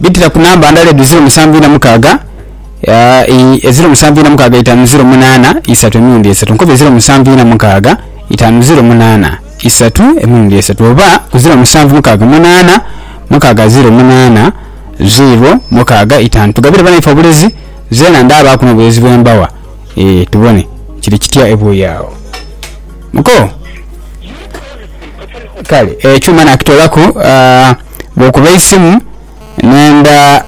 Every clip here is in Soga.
Bitira ku namba ndala edho ziro musanvu ina mukaaga ii ziro musanvu ina mukaaga itaanu ziro munaana isatu emirundi esatu. Nkoba eziro musanvu ina mukaaga itaanu ziro munaana isatu emirundi esatu oba ku ziro musanvu mukaaga munaana mukaaga ziro munaana ziro mukaaga itaanu. Tugabire banaife obulezi zeena ndaabaaku n'obulezi bwe mbawa ee tubone kiri kitya ebuuyi agho. Muko. Kale ekyuma nakitoolaku bwokuba eisimu nenda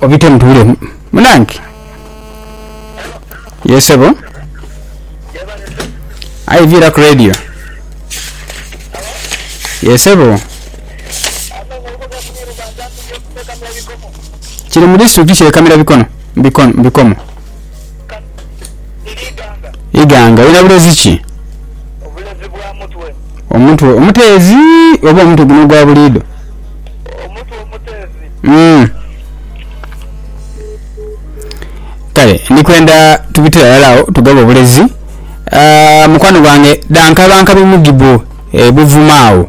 obitemu tubule munange ye sebo aye viiraku radio ye sebo kiri mu disitulikiti kye Kamira bikono bikomo. Iganga lirina bulezi ki? Omutwe omuteezi oba omutwe guno ogwa buliidho? Kale ndi kwenda tubitire aghalala agho tugabe obulezi. Mukwano gwange dhankabankabi mugibbo ebuvuma agho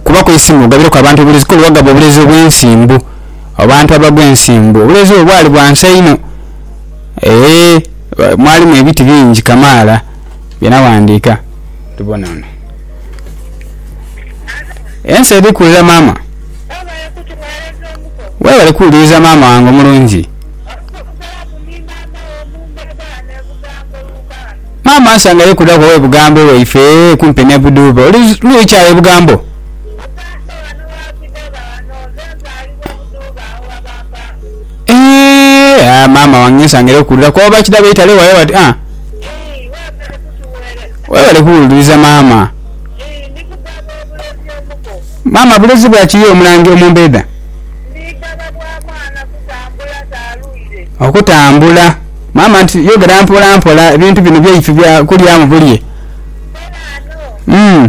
kubaku eisimu ogabireku abantu obulezi kuba oli wagaba obulezi obw'ensimbu abantu abagwa ensimbu obuleezi bwe bwali bwa nsa inho. Ee, mwalimu ebiti bingi kamaala bye nawandiika. Tubone wano. Ensi eri kuwulira maama. Weebale kuwuliriza maama wange omulungi. Maama ansanga ye kudhaku ow'e Bugambo ewaife kumpi n'e Buduube. Oli lwiki agho e Bugambo? Eeh maama wange nsangire kukulira kuba bakida beitale wale bati ah webale kuwuliriza maama. Maama bulezi bwaki ye omulangi omumbeda? Okutambula maama nti yogera mpola mpola ebintu bino byaife bya kulyamu bulye uuhh.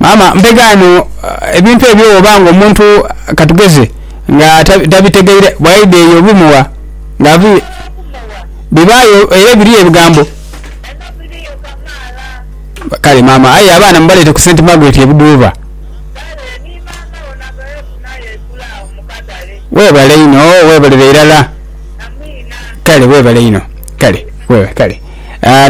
Maama mpe ghano ebintu ebyo bwoba nga omuntu katugeze nga tabitegeire bwaidha eyo obimugha nga ava ere bibagho era biriyo ebigambo kale maama aye abaana mubalete ku sente magoti ebidhuuba webale inho webalire irala kale webale inho kale.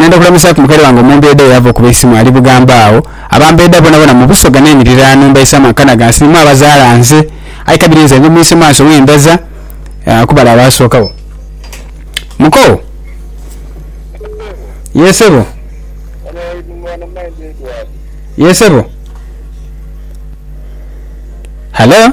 Nenda kulamusaaku mukali wange omwombeeda eyava okuba eisimu ali Bugamba agho. Abambeeda bonabona mu Busoga n'enhiriraano mbaisaamu akana ghansi ni mwabazaala nze. Aye kabiri nze ndi mwise mwanso we ndaza ku bale abaasookagho. Muko. Yee sebo. Yee sebo. Halo.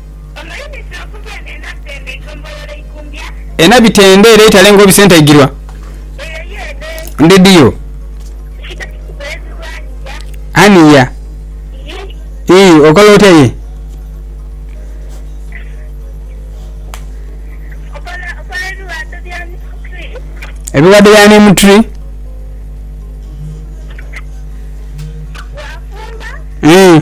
Ena bitende era itale nga obisentaigirwa ndhedhiyo aniya ii okola otya ye. Ebiwadho bya neem tree ii.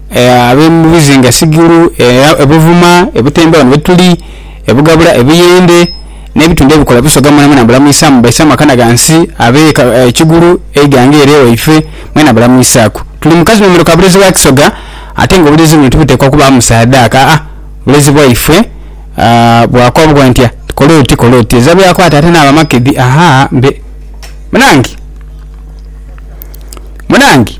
Abe mu bizinga sigulu, e Buvuma, e Butemba ghano gh'etuli, e Bugabula, e Buyende n'ebitundhu ebikola Busoga mwenamwena mbulamwisaamu. Baise amakana ghansi abe e Kigulu, e Iganga ere ewaife mwena bulamwisaaku. Tuli mu kazinoomero ka bulezi bwa Kisoga ate nga obulezi buno tibuteekwa kubaamu saadaaka aa bulezi bwaife bwakwa bwa ntya kola oti kola oti ezira byakwata ate n'aba makedhi ahaa mbe munange munange.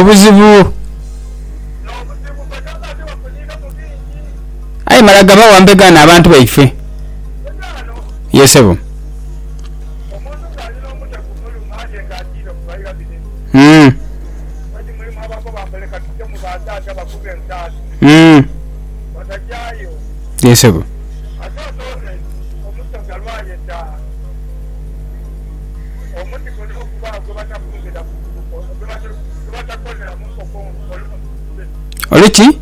Obuzibu aye mala gabawa mbega no abantu baife ye sebo. Yee sebo. Olu ki?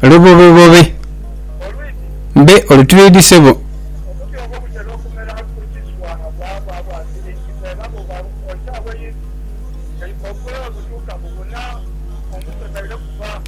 Lubobebobe. Mbe olutwidhi sebo.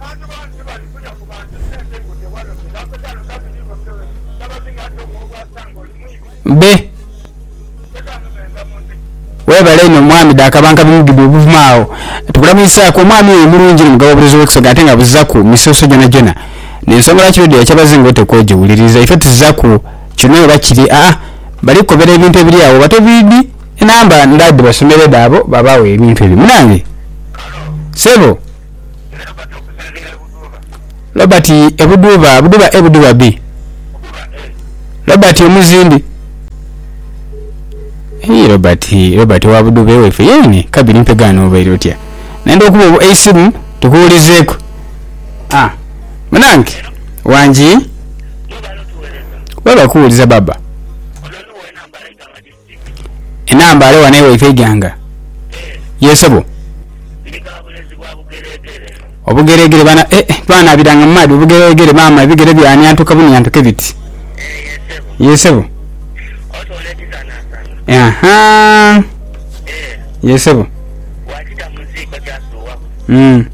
Bantu bangi tibalifunya kuba nti sente ngute wano ze bakoze ghano nga ziri iboke zabazinga nti ogho gw'okwasa ng'oli mwibi. Be. Teka eno meeza mu nzigi. Webale inho mwami Dakabanka bimugidwa obuvuma agho tukulamiisaaku omwami oyo mulungi ni mugaba oburezo w'ekisoga ate nga abuzaku misoso gyonajyona nensonga lwaki radio yakyabazinga otekwa ojiwuliriza ife tuzaku kyona oba kiri aa bali kukobera ebintu ebiri agho oba tobiidi Enamba ndha dhibasomere dhaabo babaagho ebintu ebyo munange. Sebo. Robert e Budhuba Budhuba e Budhuba bi Robert omuzimbi Eii Robert Robert owa Budhuba ewaife yeene Kabiri mpega ano obaire otya nenda okuba eisimu tukuwulizeeku ah munange wangi Webale kuwuliza baba. Enambaale wano ewaifo eighanga. Yee sebo. Obugeregere bana eh eh twanabiranga mu maadhi obugeregere maama ebigere byanyantuka bunyantuke biti. Yee sebo. Ahaa yee sebo uhmm.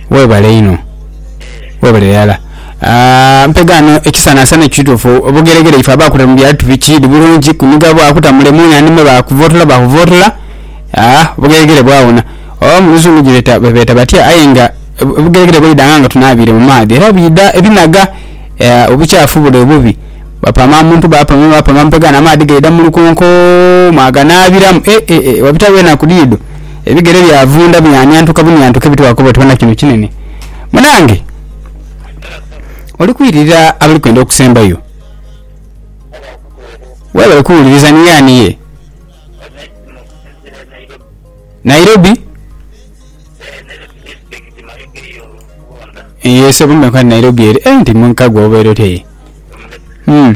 Webale inho. Webale irala mpegaano ekisanasana ekituufu obugeregere ife abakuta mu byalo tubikiri bulungi kuniga bwakuta mule munhani mwe bakuvotola bakuvotola obugeregere bwawona oba muluzungu gyebeeta batya aye nga obugeregere bwaidanga nga tunaabiire mu maadhi era bwidha ebinaga obukyafu bule obubi bapama muntu bapama bapama mpegaano amaadhi gaidha mu lukonko mwaganaabiramu ee wabitabyo enaku diidho ebigere byavunda byanyantuka bunyantuka ebitwaakoba oti wona kino kinene. Munange oli kwirira abali kwenda okusembayo. Webale kuwuliriza ni ani ye? Nairobi? Ye sebo mbe nkwani Nairobi eri. Eh nti munkagwa obeera otya ye? Hmm.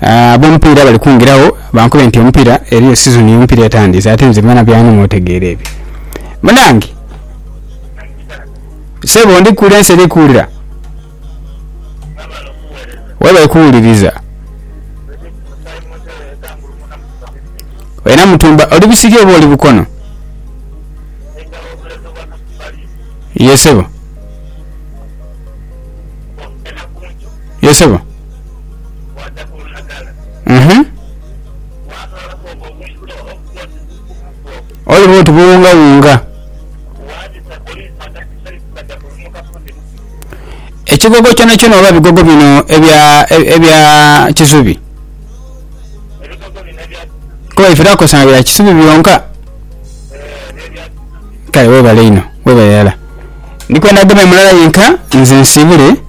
Abomupiira bali kungiragho bankube nti omupiira eriyo sizoni yomupiira etandiise ate nze byona byanuma otegeera ebyo munange sebo ndi kuwulira ensi eri kuwulira webale kuwuliriza wena mutumba oli busirye oba oli bukono ye sebo ye sebo. Oliba oti buwungawunga. Ekigogo kyonakyona oba ebigogo bino ebya ebya kisubi kuba ife twakozesanga bya kisubi byonka kale webale inho webale irala ndikwenda gema mulala yenka nze nsibule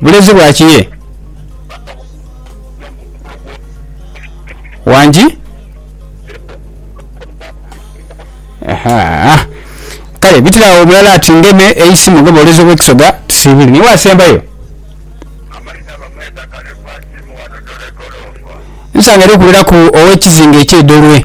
Bulezi bwa ki ye? Wangi? Ahaa. Kale bitira awo mulala ati ngeme eisimu nga bwoleza obwekisoga tusiibule. Niiwe asembayo? Nsangere okuwuliraku ow'ekizinga eky'e Dolwe.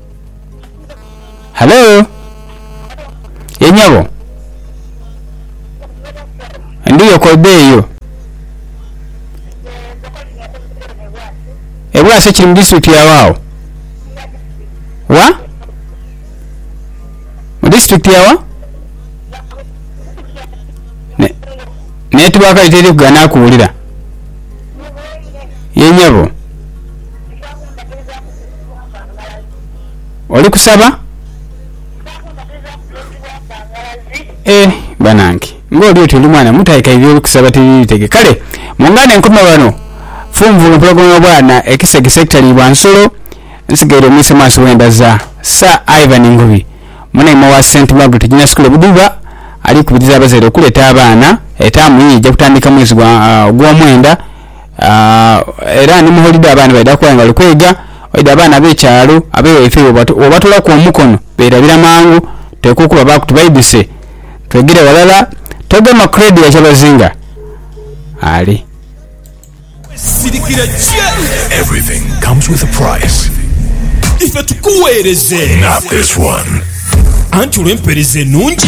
Halo? Ye nyabo? Ndiyo kobe eyo. E Bwaise kiri mu disitulikiti ya wa agho? Wa? Mu disitulikiti ya wa? Ne- Network yo teri kugana kuwulira. Ye nyabo? Oli kusaba? Eh banange nga oli oti oli mwana muto aye k'ebyo by'oli kusaba tibiri bitege. Kale mungane nkome ghano funvu lwo mpologoma y'obwana ekisegese ekitaliibwa nsolo. Nsigaire omwise maaso bwe ndaza Sir Ivan Ngubi, munaimwa wa Saint Margaret Junior School e Buduba ali kubiriza abazaire okuleeta abaana. Etaamu ye eija kutandika mwezi gwa ogwomwenda. Era ni mu holide abaana baidha kuba nga bali kweiga. Oidha abaana ab'ekyalo, ab'ewaife bwobatolaku omukono beerabira mangu. Oteekwa okubabaaku tubaidhuse twegere ghalala. Toga Macready ya Kyabazinga ali. Wesirikire ki? Ife tukuweereze anti olw'empeereza enungi.